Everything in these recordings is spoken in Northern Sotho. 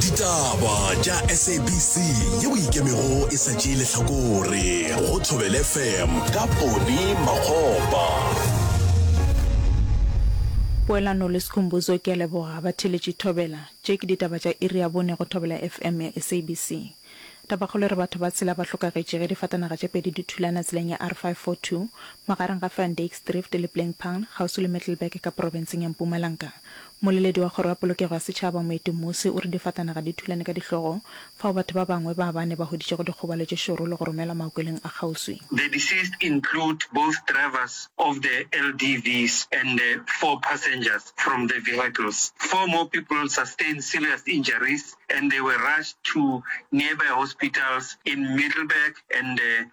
ditaba tša sabc yeo ikemego e sa tšee lehlakore go thobel fm ka pone magopa poelano le sekhumbuzo ke a leboga ba theletše thobela tše ke ditaba tša iri ya bone go thobela fm ya sabc tabakgolo re batho ba tshela ba hlokagetše ge difatanaga tše pedi di thulana tseleng ya r 542 magareng ga fandakesdrift le plainpang kgauswi le mittelberg ka porofenseng ya mpumalanka Moleledi wa Kgoro ya Polokego ya Setšhaba, Moeti Mmusi, o re difatanaga di thulane ka dihlogo fao batho ba bangwe ba bane ba hweditšego dikgobalo tše šoro le go romelwa maokelong a kgauswi. The deceased include both drivers of the LDVs and the four passengers from the vehicles. Four more people sustained serious injuries and they were rushed to nearby hospitals in Middelburg and the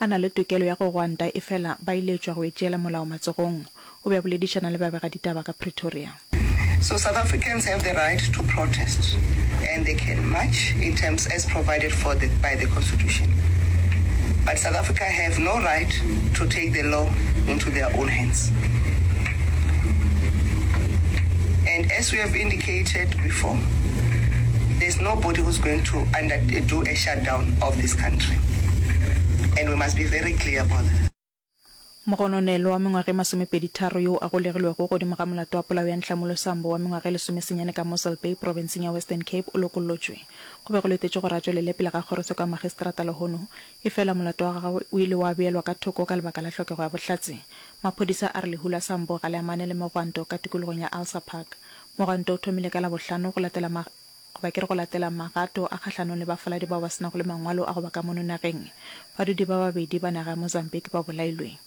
a na le tokelo ya go gwanta efela ba iletšwa go e tšeela molao matsogong, o be a boledišana le babegaditaba ka Pretoria. So South Africans have the right to protest and they can march in terms as provided for the by the constitution but South Africa have no right to take the law into their own hands and as we have indicated before there's nobody who's going to under do a Mogononelwa wa mengwaga e masomepeditharo yo a golegilwego godimo ga molato wa polao ya Nhlamulo Sambo wa mengwaga e lesomesenyane ka Mossel Bay profenseng ya Western Cape o lokollotšwe. Go be go letetšwe gore a tšwelele pele ga kgorotsheko ya magistrata lehono efela molato wa gagwe o ile wa beelwa ka thoko ka lebaka la hlokego ya bohlatse. Maphodisa a re lehu la Sambo ga le amane le megwanto ka tikologong ya Alsa Park. Mogwanto o thomile ka Labohlano go latela goba ke re go latela magato a kgahlanong le bafaladi bao ba se nago le mangwalo a go ba ka mono nageng, badudi ba babedi ba naga ya Mozambique ba bolailwe.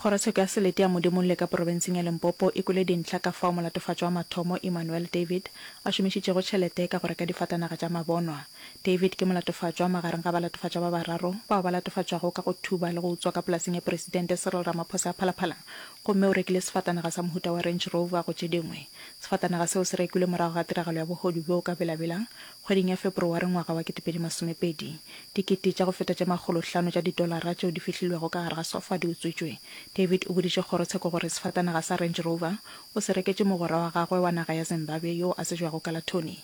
Kgorotsheko ya Selete ya Modimolle ka porobenseng ya Limpopo e kwele dintlha ka fao molatofatšo wa mathomo Emmanuel David a šomišitšego tšhelete ka go reka difatanaga tša mabonwa. David ke molatofatšwa magareng ga balatofatšwa ba bararo bao ba latofatšwago ka go thuba le go utswa ka polaseng ya Presidente Cyril Ramaphosa ya Phalaphala Gomme o rekile sefatanaga sa mohuta wa Range Rover go tše dingwe. Sefatanaga seo se rekilwe morago ga tiragalo ya bohodu bjo o ka belabelang, kgweding ya Feborowari ngwaga wa ketepedi masomepedi. Dikete tša go feta tše makgolo hlano tša didolara tšeo di fihlilwego ka gare ga sofa di utswitšwe. David o boditše kgorotsheko gore sefatanaga sa Range Rover o se reketše mogwera wa gagwe wa naga ya Zimbabwe yoo a tsejwago ka la Tony.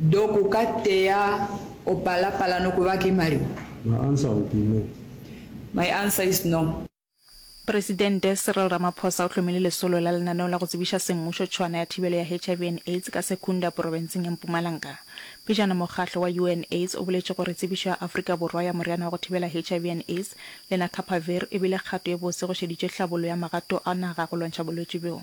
Doc o ka tea o pala pala no kuba ki mari? My answer will be no. My answer is no. Presidente Cyril Ramaphosa o hlomile lesolo la lenaneo la go tsebiša semmušo tšhwana ya thibelo ya HIV and AIDS ka Secunda porobenseng ya Mpumalanga. Pejana mokgahlo wa UNAIDS o boletše gore tsebišo ya Afrika Borwa ya moriana wa go thibela HIV and AIDS, lenacapavir, e bile kgato e botse go šeditše hlabollo ya magato a naga go lwantšha bolwetši bjo.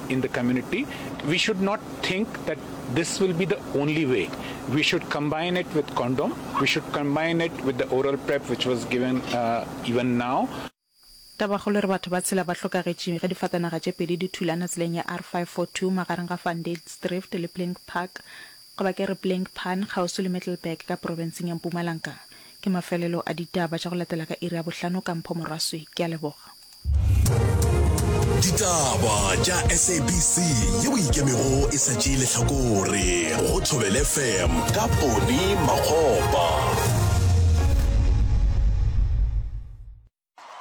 in the community, we should not think that this will be the only way. We should combine it with condom. We should combine it with the oral prep which was given uh, even now. Tabakgolo re batho ba tshela ba hlokagetše ge difatanaga tše pedi di thulana tseleng ya R542 magareng ga Van Dijkdrift le Plink Park, goba ke re Plink Pan, kgauswi le Middelburg ka profenseng ya Mpumalanka. Ke mafelelo a ditaba tša go latela ka iri ya bohlano ka mpho morwaswi. Ke a leboga. ditaba tša sabc ye o ikemego e sa tšee lehlakore go thobele fm ka pone makgopa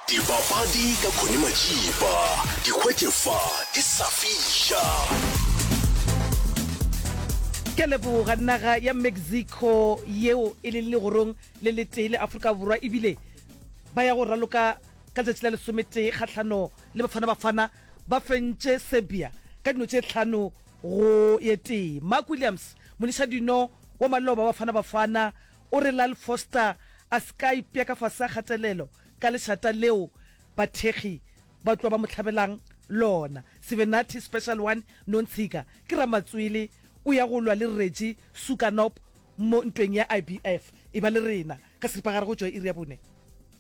dipapadi ka khone majipa dikgwetšefa di sa fiša ke leboga naga ya mexico yeo e leng legorong le letee le afrika borwa ebile ba ya go raloka Ka letšatši la lesometee kgahlano le Bafana Bafana ba fentše Serbia ka dino tše hlano go ye tee. Mark Williams, monišadino wa maloba wa Bafana Bafana o re Lyle Foster a se ka ipea ka fase ga kgatelelo ka lešata leo bathekgi ba tloa ba mo hlabelang lona. Sivenathi Special One Nontshiga ke ramatswele o ya go lwa le Reggie Sukanop mo ntweng ya IBF. Eba le rena ka seripagare go tšwa iri ya bone.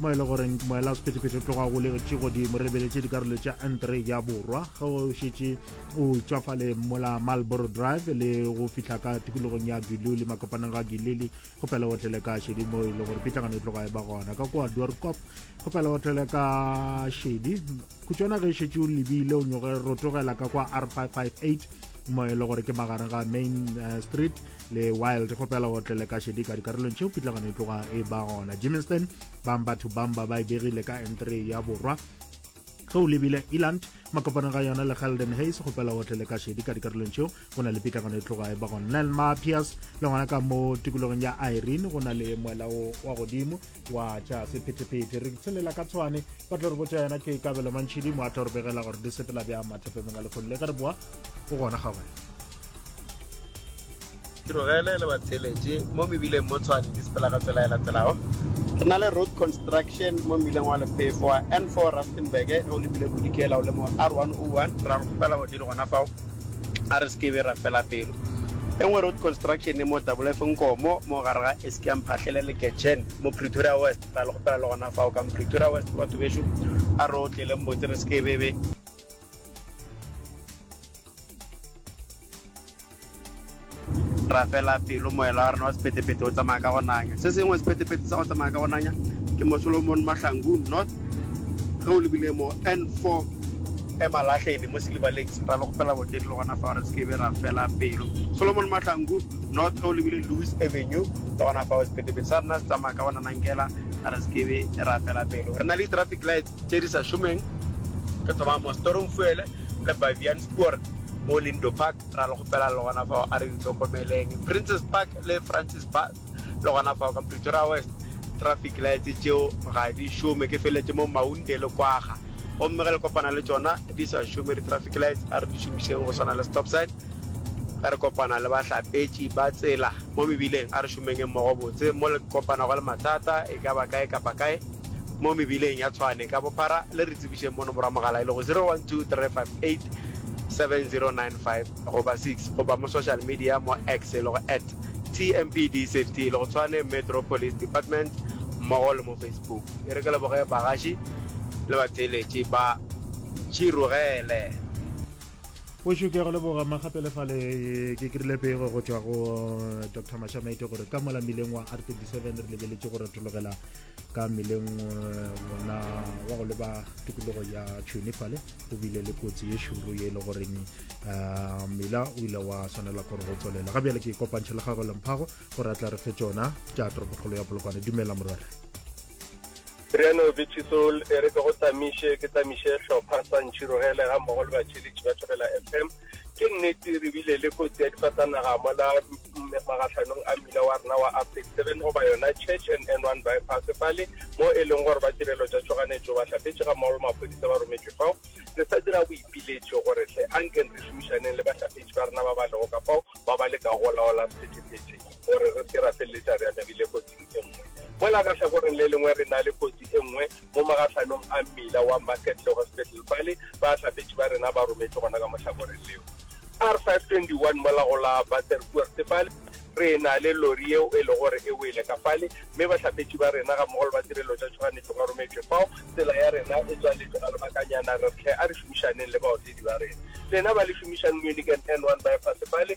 mo e le gore moela sephethephethe o tloga golegetše godimo re lebeletše dikarolo tša antre ya borwa ge o šetše o tšwafale mola malboro drive le go fihla ka tikologong ya giluli makopaneng ga giluli go pela otlele ka šedi mo e le gore pitlagano e tloga e ba gona ka kwa dorkop go pela otlele ka šedi khutšwana ge e šetše o lebile o nyoge rotogela ka kwa r 558 mo e le gore ke magareng ga main eh, street le wild go pela o tlele ka šedi ka dikarolong tšeo pitlagano e tloga e ba gona jimminston bang batho bang ba ba e begile ka n3 ya borwa tlou lebile eland makopana ga yona le galden hays go pela o tlele ka šedi ka dikarolong tšeo go na le pitlagano e tloga e ba gona nelma piers le gona ka mo tikologong ya irene go na le moela wa godimo wa tša sephetephete re tshelela ka tshwane ba tlo re botša yona ke kabelo mantšhidi mo a tlo re begela gore di sepela bja mathepemeng a lekgolo le ge re boa o gona ga wena tirogele le batheletše mo mebileng mo tshwane di sepela ka tsela e latelago re na le road construction mo mebileng wa lephefo wa n4 rustenburg ge o lebile bodikela o le mo r101 ra go fela godile gona fao A re se ke be ra fela pelo. E nngwe road construction e mo Double-F Nkomo mo gare ga Eskiam Phahlele le Getchen mo Pretoria West. Ra le kgopela le gona fao ka Pretoria West batho bešo, a re otleleng botse re se ke be be. Rapela pelo, moela wa rena wa sephethephethe o tsamaya ka go nanya. Se sengwe sephethephethe sa go tsamaya ka go nanya ke mo Solomon Mahlangu North ge o lebile mo N4 Emalahleni mo Silver Lakes. Ra le kgopela boteng le gona fao re se ke be ra fela pelo. Solomon Mahlangu North ge o lebile Lewis Avenue le gona fao sephethephethe sa rena se tsamaya ka go nanankela re se ke be ra fela pelo. Re na le di-traffic lights tše di sa šomeng, re thoma mo Stormfuele le Baviaanspoort mo Lindo Park. Ra le kgopela le gona fao a re di hlokomeleng. Princes Park le Francis Bass le gona fao ka Pretoria West. Traffic lights tšeo ga di šome, ke feleletše mo Maunde le Kwagga. Gomme ge le kopana le tšona di sa šome di traffic lights, a re di šomišeng go swana le stop sign. Ge re kopana le bahlapetši ba tsela mo mebileng, a re šomenge mmogo botse. Mo le kopanago le mathata e ka ba kae kapa kae mo mebileng ya Tshwane ka bophara, le re tsebišeng mo nomoro ya mogala e lego 012 356 87095 goba 6 goba mo social media mo X e lego at TMPDSafety le go Tshwane Metro Police Department mmogo le mo Facebook. E re ke leboge bagaši le batheeletši ba Tširogele. Bošu ke a go leboga magape le fale ke krile pego go tšwa go Doctor Mashamete gore ka mola mmileng wa R27 re lebeletše go retologela ka mmeleng wona wa go leba tikologo ya tšhone fale go bile le kotsi ye šoro ye e le goreng ah, mmila o ile wa swanela gore go tswelela ga bjale ke kopantšhe le gagwe lemphago gore a tla re fe tsona tša toropokgolo ya polokwane dumela morwere Riano Bitshisol e re ke go tsamiše ke tsamiše hlopha sa ntšhirogele ga mmogo le batšheletši ba Thobela FM ke nnete re bile le kotsi ya difatanaga mola magatlhanong a mmila wa rena wa uptake seven goba yona church and n one bypass fale mo e leng gore ba tirelo tša tšhoganetšo ba hlapetše ga mmaolo maphodisa ba rometšwe fao re sa dira boipiletšo gore tle a nke re šomišaneng le bahlapetši ba rena ba ba lego ka fao ba ba leka go laola sephethephethe gore re se ra feleletša re amegile kotsing e nngwe mola ka tlhakoreng le lengwe re na le kotsi e nngwe mo magahlwanong a mmila wa Market le Hospital Valley, bahlapetši ba rena ba rometšwe gona ka mohlakoreng leo. R521 mola go la Baterkoorte fale, re na le lori yeo e lego gore e wele ka fale, mme bahlapetši ba rena gammogo le ba tirelo tša tšhoganetšo ba rometšwe fao. Tsela ya rena e tswaletšwe ga lebakanyana, re tle a re šomišaneng le baotedi ba rena. Lena ba le šomišang Munich and N1 Bypass fale.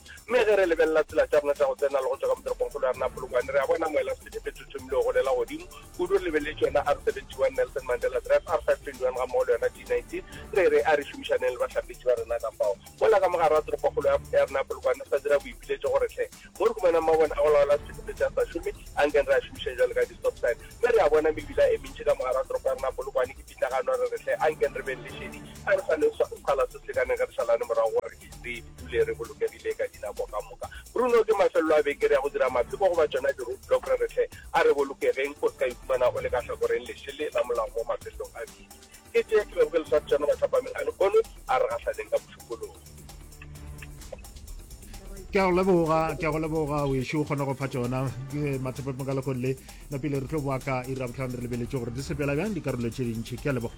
Mme ge re lebelela tsela tša rena tša go tsena le go tšwa ka mo toropongkgolo ya rena ya Polokwane, re a bona moela sebete e thothomile go golela godimo. Kudu re lebeletse yona R71 Nelson Mandela Drive, R521 gammogo le yona D19. Re re a re šomišaneng le bahlapetši ba rena ka fao. Mola ka mo gare ga toropokgolo ya ya rena ya Polokwane re sa dira boipiletšo go re hle. Mo re humanang mabone a go laola sebete se a sa šome, ankeng re a šomišeng jwalo ka di-stop sign. Mme re a bona mebila e mentši ka mo gare ga toropo ya rena ya Polokwane e pitlagano. Re re hle, ankeng re beng le šedi, a re sa le swa, sekgala se se lekaneng ge re šalane morago go re. re dule re bolokegile ka dinako ka moka. Bruno, ke mafelelo a beke re ya go dira mapheko goba tšona di-roadblock re re hle a re bolokegeng go ska ikhumana o le ka hlakoreng lešele la molao mo mafelelong a beke. Ke tše ke bego ke le swartšana mathapameng a lehono a re gahlaneng ka bošupologo. Ke a go leboga, ke a go leboga wešo o kgona go fa tšona mathapameng ka lehono le napile re tlo boa ka ira botlhano re lebeletše gore di sepela bjang dikarolo tše dintšhi. Ke a leboga.